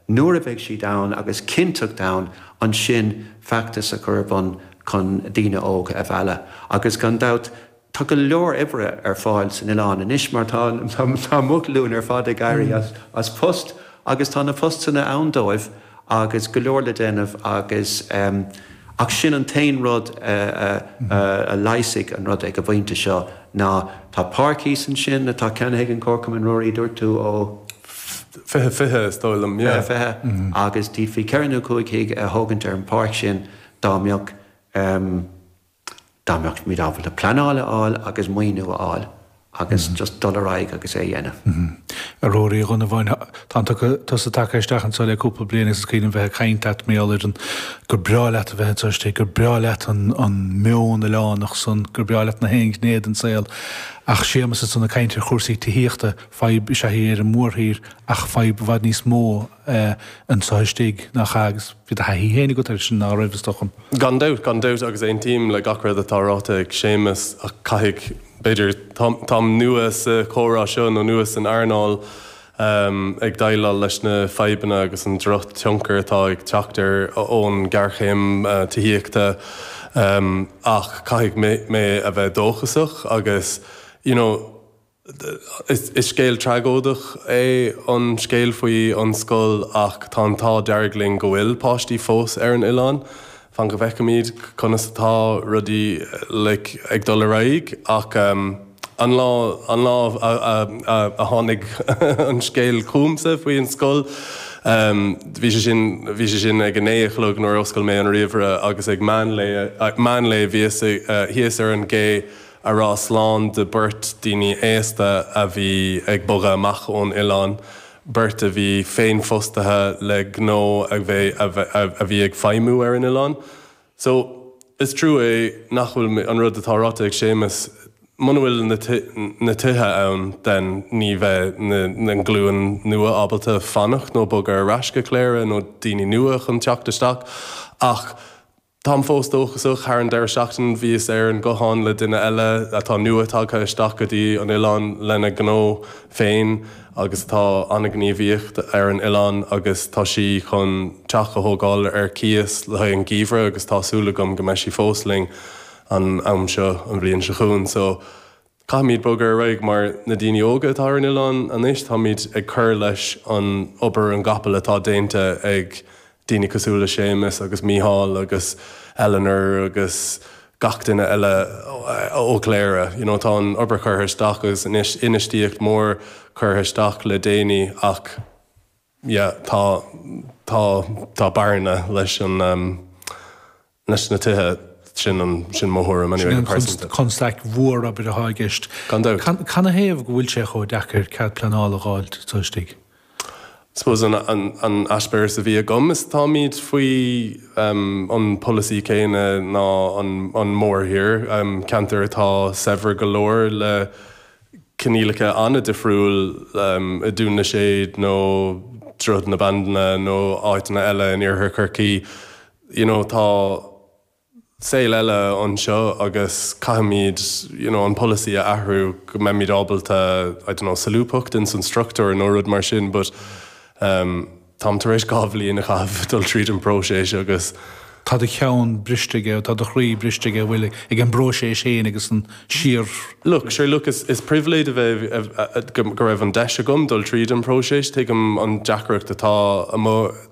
nuair a bheidh siad ann, agus cinnteacht ann ansin feachtas a chur ar bun chun daoine óga a mhealladh. Agus gan dabht, tá go leor oibre ar fáil san oileán anois mar tá mo ghlúin ar fad ag éirí as post agus tá na postanna ann dóibh agus go leor le déanamh agus, Ach sin an t-aon rud a leigheasfaidh an rud ag an bpointe seo ná tá páirc thíos ansin atá ceannaithe ag an gComharchumann, Ruairí, a dúirt tú, ó. Fiche, fiche, is dóigh liom, yeah. Fiche, fiche, agus d'fhéadfaí ceithre nó cúig thigh a thógaint ar an pháirc sin dá mbeadh. dá mbeadh muid ábalta pleanáil a fháil agus maoiniú a fháil agus just dul ar aghaidh agus é a dhéanamh. A Ruairí Uí Dhonnabháin, tá tusa tagtha isteach anseo le cúpla bliain agus is cuimhin liom bheith ag caint leat, mí Aibreáin, gur breá leat a bheith anseo istigh, gur breá leat an meon oileánach san, gur breá leat gach aon ghné den saol. Ach Séamus ansan ag caint ar chúrsaí tithíochta, fadhb is ea í ar an mórthír ach fadhb i bhfad níos mó anseo istigh, nach ea? Agus bhí do thaithí féin agat leis, ná raibh, is dócha? Gan dabht, gan dabht agus aontaím le gach rud atá ráite ag Séamas ach caithfidh, b'fhéidir, táim nua sa chomhrá seo nó nua san earnáil, ag déileáil leis na fadhbanna agus an drochthionchar atá ag teacht ón ghéarchéim tithíochta ach caithfidh mé a bheith dóchasach agus you know, Is scéal tragóideach é an scéal faoi an scoil ach tá an t-ádh dearg linn go bhfuil páistí fós ar an oileán. Fan go bhfeicfimid conas atá rudaí ag dul ar aghaidh ach an lá, an lá a tháinig an scéal chugamsa faoi an scoil bhí sé sin, bhí sé sin ag a naoi a chlog nuair a oscail mé an ríomhaire agus ag meán lae, meán lae bhíos thíos ar an gcé. ag rá slán le beirt daoine aosta a bhí ag bogadh amach ón oileán, beirt a bhí féinfhostaithe le gnó a bhí, a bhí ag feidhmiú ar an oileán. So, is trua é nach bhfuil an rud atá ráite ag Séamus, muna bhfuil na tithe ann, then ní bheidh an glúin nua ábalta fanacht nó bogadh ar ais go Cléire nó daoine nua chun teacht isteach ach, Táim fós dóchasach, thar an deireadh seachtain bhíos ar an ghuthán le duine eile atá nua tagtha isteach go dtí an oileán lena gnó féin agus atá an-ghníomhach ar an oileán agus tá sí chun teach a thógáil ar cíos le haghaidh an geimhridh agus tá súil agam go mbeidh sí fós linn an am seo an bhliain seo chugainn so Caithfimid bogadh ar aghaidh mar na daoine óga atá ar an oileán anois, táimid ag cur leis an obair an gcapall atá déanta ag daoine cosúil le Séamus agus Mícheál agus Eleanor agus gach duine eile ó Chléire you know tá an obair curtha isteach agus infheistíocht mhór curtha isteach le déanaí ach yeah tá tá tá bearna leis an na tithe. Sin mo thuairim go pearsanta. Constaic mhór b'fhéidir atá i gceist. Gan dabht. Cana thaobh go bhfuil sé chomh deacair cead pleanála a dh'fháil taobh istigh? Suppose an eispéireas a bhí agam is táimid faoi an polasaí céanna ná an mórthír, ceantair atá saibhir go leor le coinníollacha an-difriúil i nDún na Séad nó Droichead na Bandan nó áiteanna eile in Iarthar Chorcaí. you know tá saol eile anseo agus caithfimid you know an polasaí a athrú go mbeimid ábalta I don't know solúbthacht ins an structúr nó rud mar sin but ehm táim tar éis dhá bhliain a chaitheamh dul tríd an bpróiseas agus tá do cheann briste aige, tá do chroí briste aige a bhfuil ag an bpróiseas féin agus ansin Look, sure look is is pribhléid a bheith a a a go raibh an deis agam dul tríd an bpróiseas, tuigim an deacracht atá amuigh,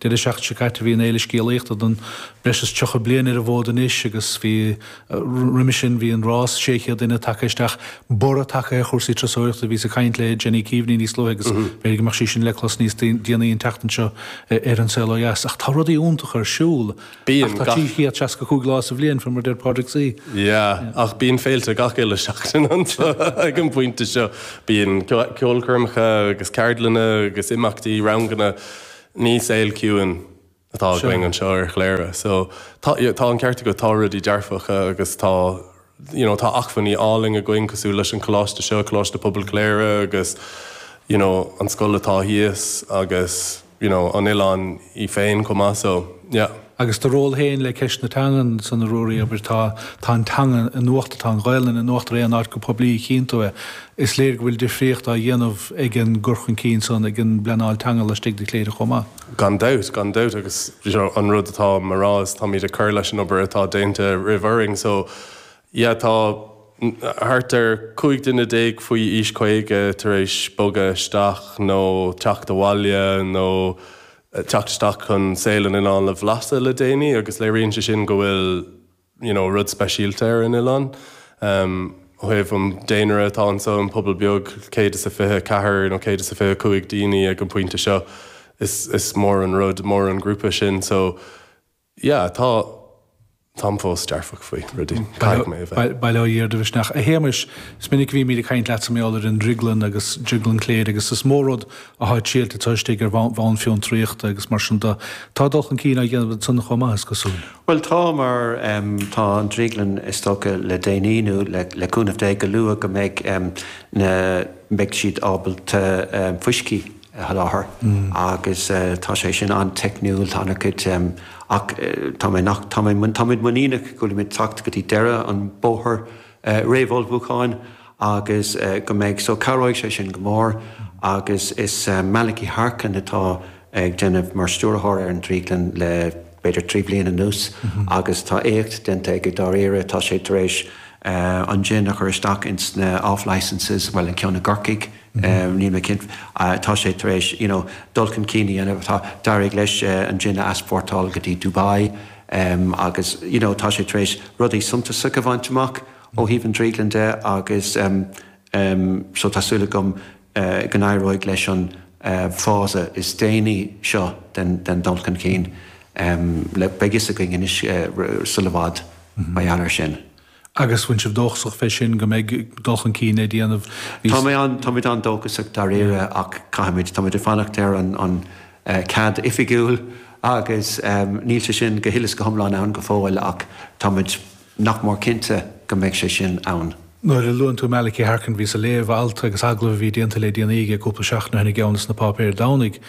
Deireadh seachtaine seo caite bhí an Fhéile Scéalaíochta atá breis is tríocha bliain ar an bhfód anois agus bhí roimhe sin bhí an rás 600 duine tagtha isteach, borradh tagtha ar chúrsaí turasóireachta. Bhíos ag caint le Jenny Keaveney níos luaithe agus b'fhéidir go mbeadh sí sin le clos níos déanaí an tseachtain seo ar An Saol Ó Dheas. Ach tá rudaí iontacha ar siúl ach tá 365 lá sa bhliain fé mar a deir Pádraig. Yeah, ach bíonn féilte gach uile seachtain anseo ag an bpointe seo. Bíonn ceolchoirmeacha agus ceardlanna agus imeachtaí, ranganna. Ní saol ciúin atá againn anseo ar Chléire so tá, you know, tá an ceart agat, tá rudaí dearfacha agus tá, you know, tá acmhainní álainn againn cosúil leis an choláiste seo, Coláiste Pobail Chléire agus, you know, an scoil atá thíos agus, you know, an oileán é féin chomh maith so, yeah. agus do ról féin le ceist na teangan san a Ruairí, obair tá tá an teanga in uachtar, tá an Ghaolainn in uachtar aon áit go poiblí a chíonn tú í. Is léir go bhfuil difríocht á dhéanamh ag an gcur chun cinn san ag an bpleanáil teanga laistigh de Chléire chomh maith. Gan dabht, gan dabht agus seo an rud atá mé a rá is táimid ag cur leis an obair atá déanta roimh orainn so yeah tá thart ar 15 duine faoi aois 50 tar éis bogadh isteach nó teacht abhaile nó teacht isteach chun saol an oileáin a bhlaiseadh le déanaí agus léiríonn sé sin go bhfuil you know rud speisialta ar an oileán um, ó thaobh an daonra atá anseo an pobal beag céad is a fiche ceathair nó céad is a fiche cúig daoine ag an pointe seo is, is mór an rud mór an grúpa sin so yeah tá táim fós dearfach faoi rudaí, caithfidh mé a bheith. Bail ó Dhia ar do mhisneach. A Shéamais, is minic a bhímid ag caint leatsa mar gheall ar an drioglann agus drioglann Chléire agus is mó rud atá ag triailt ansan istigh ar bhonn fiontraíochta agus mar siúd de. Tá dul chun cinn á dhéanamh ansan chomh maith, is cosúil. Bhuel tá mar tá an drioglann is dócha le déanaí nó le cúnamh Dé go luath go mbeidh na mbeidh siad ábalta fuiscí a sholáthar agus tá sé sin an-teicniúil, tá an-chuid ach tá, ach táimid muiníneach go bhfuilimid ag teacht go dtí deireadh an bhóthair réamhullmhúcháin agus go mbeidh so cabhróidh sé sin go mór agus is Malachy Harkin atá ag déanamh mar stiúrthóir ar an Drioglann le b'fhéidir trí bliana anuas agus tá éacht déanta aige dáiríre, tá sé tar éis an jin a chur isteach ins na off-licences, bhuel an ceann i gCorcaigh. níl mé cinnte, tá sé tar éis you know dul chun cinn a dhéanamh, tá, d'éirigh leis an jin a easpórtáil go dtí Dubai agus you know tá sé tar éis rudaí suntasacha a bhaint amach ó thaobh an drioglann de agus so tá súil agam go n-éireoidh leis an phase is déanaí seo den dul chun cinn, beidh fhios againn anois sula bhfad mar gheall air sin. agus an bhfuil sibh dóchasach fé sin go mbeidh dul chun cinn á dhéanamh. Táimid an-dóchasach dáiríre ach caithfimid, táimid ag fanacht ar an gcead oifigiúil agus níl sé sin go huile is go hiomlán ann go fóill ach táimid nach mór cinnte go mbeidh sé sin ann. Nuair a luann tú Malachy Harkin, bhíos ag léamh alt agus agallamh a bhí déanta le déanaí aige cúpla seachtain ó shin i gceann de na páipéir Domhnaigh,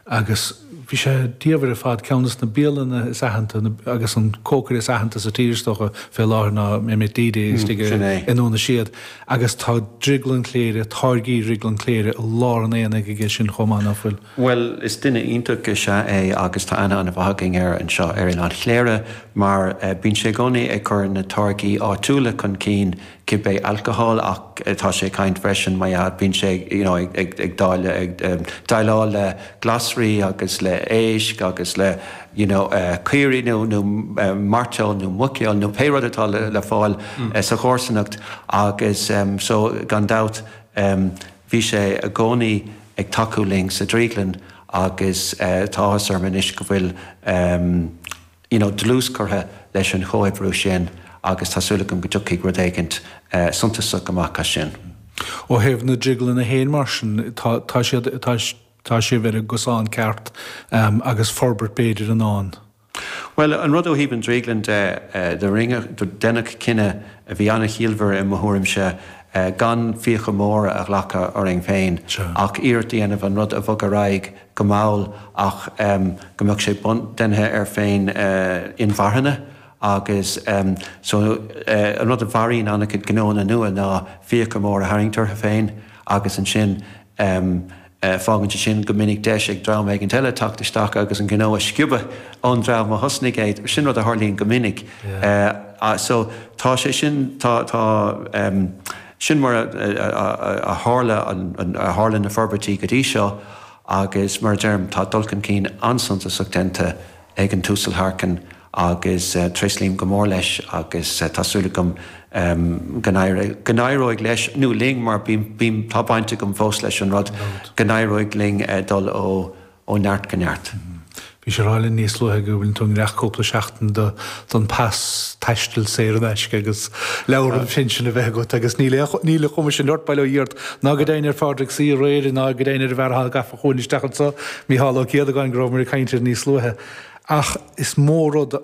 agus bhí sé diamhair ar fad, ceann des na bialanna is aitheanta agus an cócaire is aitheanta sa tír is dócha fé láthair ná Ahmet Dede istigh i nDún na Séad agus tá Drioglann Chléire, táirgí Dhrioglann Chléire i lár an aonaigh aige sin chomh maith, ná fuil? Bhuel is duine iontach is ea é agus tá aithne ana mhaith againn air anseo ar Oileán Chléire mar bíonn sé i gcónaí ag cur na táirgí áitiúla chun cinn cibé alcohol ach tá sé ag caint freisin mar atá bíonn sé you know ag ag dáileadh ag déileáil le glasraí agus le éisc agus le you know caoirigh nó nó mairteoil nó muiceoil nó pé rud atá le le fáil sa chomharsanacht agus so gan dabht bhí sé i gcónaí ag tacú linn sa drioglann agus tá áthas orm anois go bhfuil you know dlús curtha leis an chomhoibriú sin agus tá súil agam go dtiocfaidh rud éigint suntasach amach as sin. Ó thaobh na drioglainne féin mar sin, tá tá siad tá tá sibh ar an gcosán ceart agus forbairt b'fhéidir i ndán? Bhuel, an rud ó thaobh an drioglann de, do rinneadh do deineadh cinneadh a bhí an-chiallmhar i mo thuairimse gan fiacha móra a ghlacadh orainn féin ach iarracht a dhéanamh an rud a bhog ar aghaidh go mall ach go mbeadh sé deimhnithe air féin inmharthana agus so an rud a mharaíonn an-chuid gnóanna nua ná fiacha móra a tharraingt orthu féin agus ansin fágann sé sin go minic deis ag dream éigin eile teacht isteach agus an gnó a sciobadh ón dream a thosnaigh é. Sin rud a tharlaíonn go minic so tá sé sin tá Sin mar a tharla a tharla na forbairtí go dtí seo agus, mar a deirim, tá dul chun cinn an-suntasach déanta ag an tUasal Harkin agus tréaslaím go mór leis agus tá súil agam go n-éireoidh leis, nó linn mar tá baint agam fós leis an rud, go n-éireoidh linn dul ó ó neart go neart. Bhís á rá linn níos luaithe go bhfuileann tú i ngiorracht cúpla seachtain don pas taistil saor in aisce agus leabhar an phinsin a bheith agat agus níl a chuma sin ort, bail ó Dhia ort, ná go deimhin ar Phádraig Saor aréir ná go deimhin ar an bhfear atá gafa chugainn isteach anseo, Micheál Ó Céadagáin, go rabhamar ag caint air níos luaithe. Ach is mó rud a.